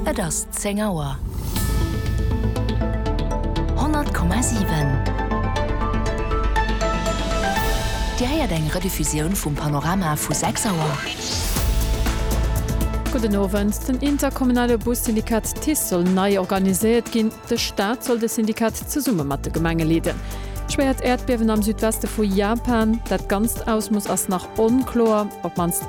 Et ass 10 Auer. 100,7 Dir héiert eng Rediffusioun vum Panorama vu 6 Auer. Gudden Owend. Den interkommunale Bussyndikat TICE soll nei organiséiert ginn. De Staat soll de Syndikat zesumme mat de Gemenge leeden. Schwéiert Äerdbiewen am Südweste vu Japan. Dat ganzt Ausmooss ass nach onkloer, op d'mannst.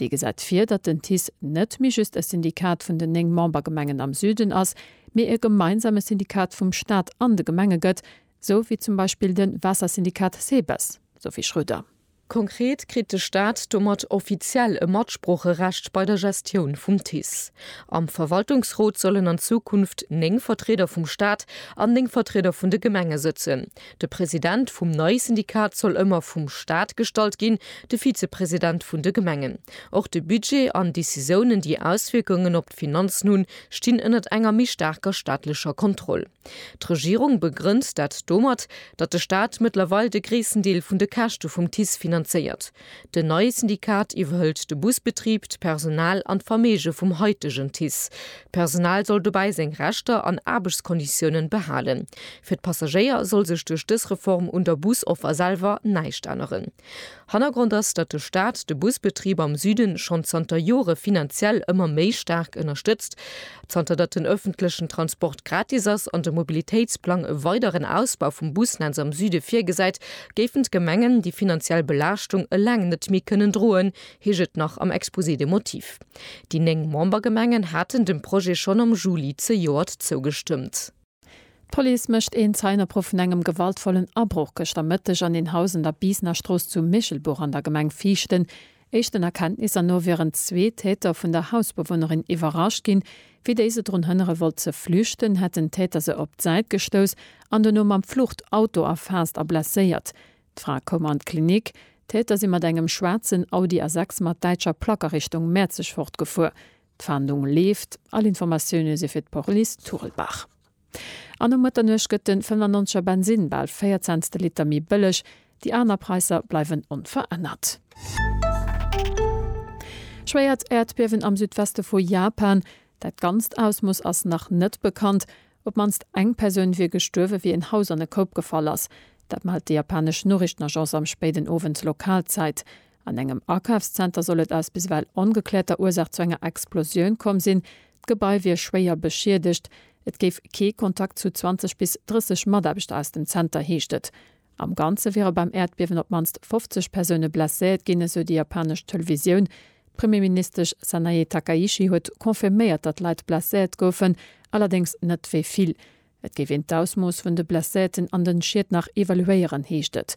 Dee gesäit vir, datt den TICE net méi just e Syndikat vun den néng Membergemengen am Süden ass, mee e gemeinsame Syndikat vum Staat an de Gemenge gëtt, sou wéi zum Beispill de Waassersyndikat SEBES, Sophie Schröder. Konkret kritt de Staat domat offiziell e Matsproocherecht bei der Gestioun vum TICE. Am Verwaltungsrot sollen an Zukunft néng Vertrieder vum Staat an néng Vertrieder vun de Gemenge sëtzen, De President vum neie Syndikat soll ëmmer vum Staat gestallt ginn, de Vizepresident vun de Gemengen. Och de Budget an Decisiounen, déi Auswierkungen op d'Finanzen hunn, stinn ënnert enger méi staarker staatlecher Kontroll. D'Regierung begrënnt dat domat, datt de Staat mëttlerweil de gréissten Deel vun de Käschte vum TICE finanzéiert. Den neie Syndikat iwwerhëlt de Busbetrib, d'Personal an d'Verméige vum haitegen TICE. D'Personal soll dobäi seng Rechter an Aarbechtskonditiounen behalen. Fir d'Passagéier soll sech duerch dës Reform un der Busoffer selwer näischt änneren. Hannergrond ass, datt de Staat de Busbetrib am Süden schonn zanter Jore finanziell ëmmer méi staark ënnerstëtzt. Zanter datt den ëffentlechen Transport gratis ass an de Mobilitéitsplang e weideren Ausbau vum Busnetz am Süde virgesäit, géifen d'Gemengen déi finanziell Belaaschtung eleng net méi kënnen droen, heescht et nach am Exposé des motifs. Déi néng Membergemengen haten dem Projet schonn am Juli zejoert zougestëmmt. D'Police mécht een Zeienopruff vun engem gewaltvollen Abroch gëschter Mëtteg an een Haus an der Biisnerstrooss zu Michelbuch an der Gemeng Viichten. Éischten Erkenntnisser no wieren zwee Täter vun der Hausbewunnerin iwwerrascht ginn. Wéi déi se drun hënnere wollt ze flüchten, hätt den Täter se op d'Säit gestouss an dono mam Fluchtauto erfaasst a blesséiert. D'Fra koum an d'Klinik. D'Täter si mat engem schwaarzen Audi A6 mat däitscher Plack a Richtung Mäerzeg fortgefuer. D'Fahndung leeft, all Informatioune si fir d'Police Turlbach. An um Mëtternuecht gëtt den 95er Bensinn bal 4 Cents de Liter méi bëlleg, déi aner Praisser bleiwen onverännert. Schwéiert Äerdbiewen am Südweste vu Japan, dat ganzt Ausmooss ass nach net bekannt. Op d'mannst eng Persoun wier gestuerwe wéi en Haus an e Koup gefall ass. Dat mellt déi japanesch Noriichtenagence am spéiden Owend Lokalzäit. An engem Akafszenter soll et aus biswell ongekläerter Ursaach zu enger Explosioun komm sinn. D'Gebai wier schwéier beschiedegt. Et géif kee Kontakt zu 20 bis 30 Mataarbechter aus dem Zenter, heescht et. Am Ganze wiere beim Äerdbiewen op d'mannst 50 Persoune blesséiert ginn, esou déi japanesch Televisioun. D'Premierministesch Sanae Takaichi huet confirméiert, datt Leit blesséiert goufen, allerdéngs net wéi vill. Et géif een d'Ausmooss vun de Blesséierten an den Schied nach evaluéieren, heescht et.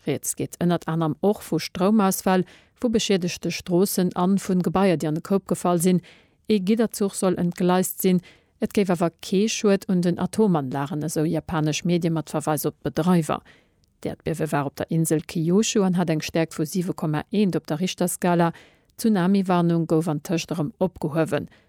Rieds geet ënnert anerem och vu Stroumausfäll, vu beschiedegte Stroossen an vun Gebaier déi an de Koup gefall sinn. Ee Gidderzuch soll entgleist sinn. Et géif awer kee Schued un den Atomanlagen, esou japanesch Medie mat Verweis op d'Bedreiwer. D'Äerdbiewe war op der Insel Kyushu an hat eng Stäerkt vu 7,1 op der Richterskala. D'Tsunami-Warnung gouf antëscht erëm opgehuewen.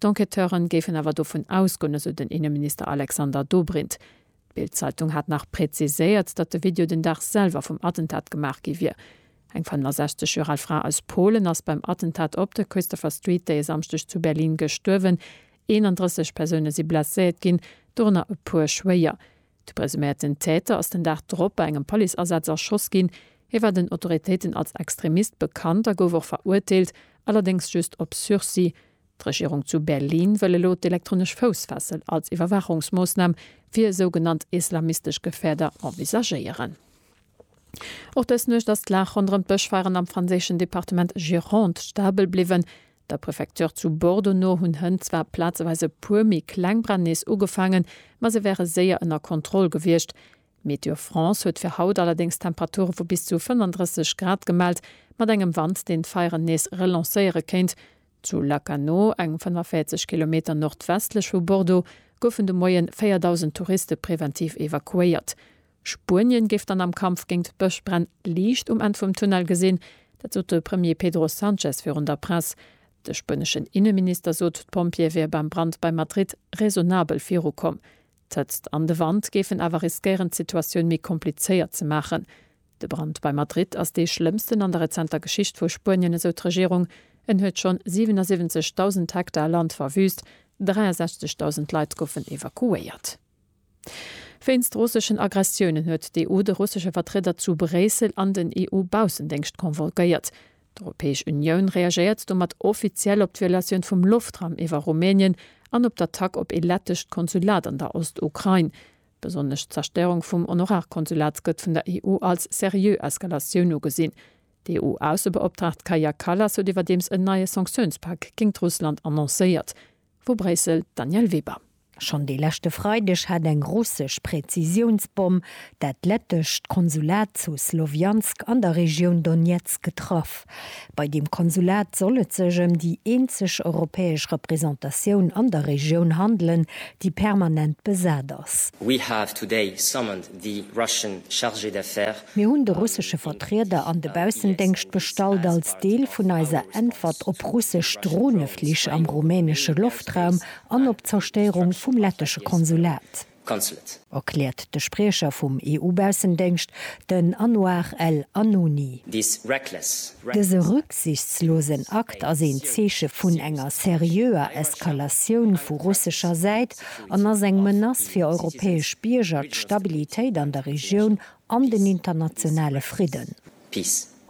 D'Enquêteuren géifen awer dovun ausgoen, esou den Inneminister Alexander Dobrindt. D'Bild-Zeitung hat nach präziséiert, datt de Video den Dag selwer vum Attentat gemaach gi wier. Eng 65 Joer al Fra aus Polen ass beim Attentat op der Christopher Street dee Samschdeg zu Berlin gestuerwen. 31 Persoune si blesséiert ginn, dorënner e puer schwéier. De presuméierten Täter ass den Dag drop bei engem Policeasaz erschoss ginn. Hie war den Autoritéiten als Extremist bekannt a gouf och verurteelt, allerdéngs just op Sursis. D'Regierung zu Berlin wëll elo d'elektronesch Foussfessel als Iwwerwaachungsmoossnam fir sougenannt islamistesch Gefäerder envisagéieren. Och dës Nuecht ass d'Lag ronderëm d'Bëschfeieren am franséischen Departement Gironde stabel bliwwen. Der Prefecture zu Bordeaux no hunn Hënn zwar plazeweis e puer méi kleng Bränn nees ugefaangen, ma se wäre séier ënner Kontroll gewiescht. Météo France huet fir haut allerdéngs Temperature vu bis zu 35 Grad gemellt, mat engem Wand, deen d'Feieren nees relancéiere kéint. Zu Lacanau, eng 45 Kilometer nordwestlech vu Bordeaux, goufen de Moie 4.000 Touriste preventiv evakuéiert. Spuenien géif dann am Kampf géint d'Bëschbränn Liicht um Enn vum Tunnel gesinn. Dat sot de Premier Pedro Sanchez virun der Press. De spueneschen Inneminister sot, d'Pompjeeë wiere beim Brand bei Madrid raisonnabel virukomm. D'Hëtzt an de Wand géifen awer riskéieren d'Situatioun méi komplizéiert ze maachen. De Brand bei Madrid ass dee schlëmmsten an der rezenter Geschicht vu Spuenien, esou d'Regierung. En huet schonn 77.000 Hektar Land verwüüst, 63.000 Leit goufen evakuéiert. Wéinst russeschen Aggressiounen huet d'EU de russesche Vertrieder zu Bréissel an den EU-Baussendéngscht convolguéiert. D'Europäesch Unioun reagéiert domat offiziell op d'Violatioun vum Loftraum iwwer Rumänien an op d'Attack op ee lettescht Konsulat an der Ost-Ukrain. Besonnesch d'Zerstéierung vum Honorarkonsulat gëtt vun der EU als seriö Eskalatioun ugesinn. D'EU-Aussebeoptraagt Kaja Kallas huet iwwerdeems en neie Sanktiounspak géingt Russland annoncéiert. Vu Bréissel, d'Danièle Weber. Schonn de leschte Freideg hat eng russesch Präzisiounsbomm dat lettescht Konsulat zu Slowiansk an der Regioun Donezk getraff. Bei deem Konsulat soll et sech ëm déi eenzeg europäesch Representatioun an der Regioun handelen, déi permanent besat ass. Die Russian Chargée d'Affaires. Mir hunn de russesche Vertrieder an de Baussendéngscht bestallt als Deel vun eiser Äntwert op russesch Droneflich am rumänesche Loftraum an op d'Zerstéierung vum lettesche Konsulat, erkläert de Spriecher vum EU-Baussendéngscht, den Anouar El Announi. Dëse rücksichtslosen Akt ass een Zeeche vun enger seriöer Eskalatioun vu russescher Säit, an ass eng Menace fir europäesch Bierger, d'Stabilitéit an der Regioun an den internationale Fridden.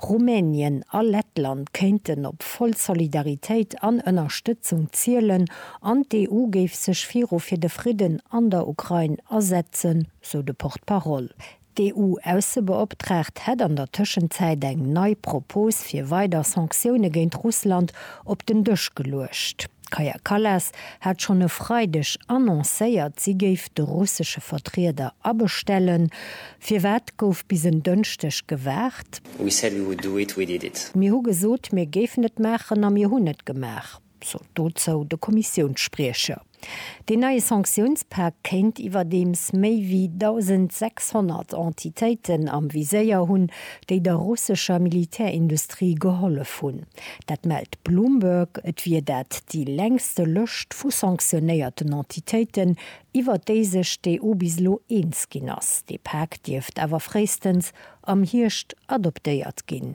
Rumänien a Lettland kéinten op voll Solidaritéit an Ënnerstëtzung zielen an d'EU géif sech viru fir de Fridden an der Ukrain asetzen, sou de Porte-parole. D'EU-Aussebeoptraagt hätt an der Tëschenzäit eng nei Propos fir weider Sanktioune géint Russland op den Dësch geluecht. D'Kaja Kallas hat schonn e Freideg annoncéiert, si géif de russesche Vertrieder abestellen. Firwat gouf bis en Dënschdeg gewaart? We said we would do it, we did it. Mir hu gesot, mir géifen et maachen a mir hunn et gemaach. sot dozou de Kommissiounsspriecher. Deen neie Sanktiounspak kéint iwwerdeems méi wéi 1.600 Entitéiten am Viséier hunn, déi der russescher Militärindustrie gehollef hunn. Dat mellt Bloomberg. Et wier dat déi längste Lëscht vu sanktionéierten Entitéiten, iwwer déi sech d'EU bis elo eens ginn ass. Dee Pak dierft awer fréistens am Hierscht adoptéiert ginn.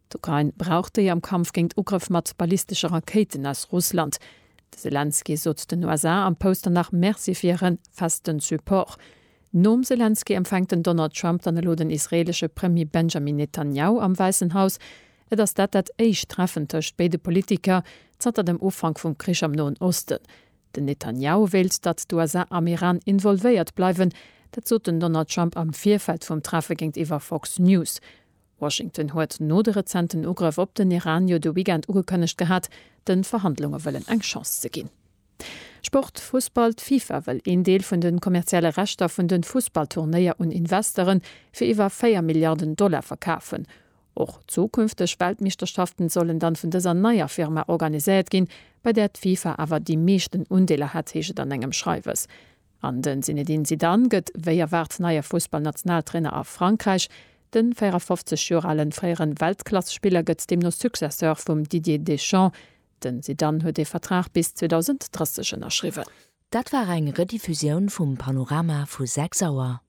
D'Ukrain brauch déi am Kampf géint Ugrëff mat ballistesche Rakéiten aus Russland. De Selenskyj sot den USA am Pouster nach Merci fir hire festen Support. Nom Selenskyj empfänkt den Donald Trump dann elo den israeelesche Premier Benjamin Netanjahu am Wäissen Haus. Et ass dat dat éischt Treffen tëscht béide Politiker zanter dem Ufank vum Krich am Noen Osten. Den Netanjahu wéilt, datt d'USA am Iran involvéiert bleiwen. Dat sot den Donald Trump am Virfeld vum Treffe géintiwwer Fox News. Washington huet no de rezenten Ugrëff op den Iran jo de Weekend ugekënnegt gehat, de Verhandlunge wëllen eng Chance ze ginn. Sport, Fussball, D'FIFA wëll een Deel vun de kommerzielle Rechter vun de Fussballturnéier un Investere fir iwwer 4 Milliarden Dollar verkafen. Och zukünfteg Weltmeeschterschaften sollen dann vun dëser neier Firma organiséiert ginn, bei där d'FIFA awer déi meeschten Undeeler hätt, heescht et an engem Schreiwes. An de Zinedine Zidane gëtt wéi erwaart neie Fussballnationaltrainer a Frankräich. De 54 Joer ale fréiere Weltklassespiller gëtt deemno Successeur vum Didier Deschamps. De Zidane huet ee Vertrag bis 2030 ënnerschriwwen. Dat war eng Rediffusioun vum Panorama vu 6 Auer.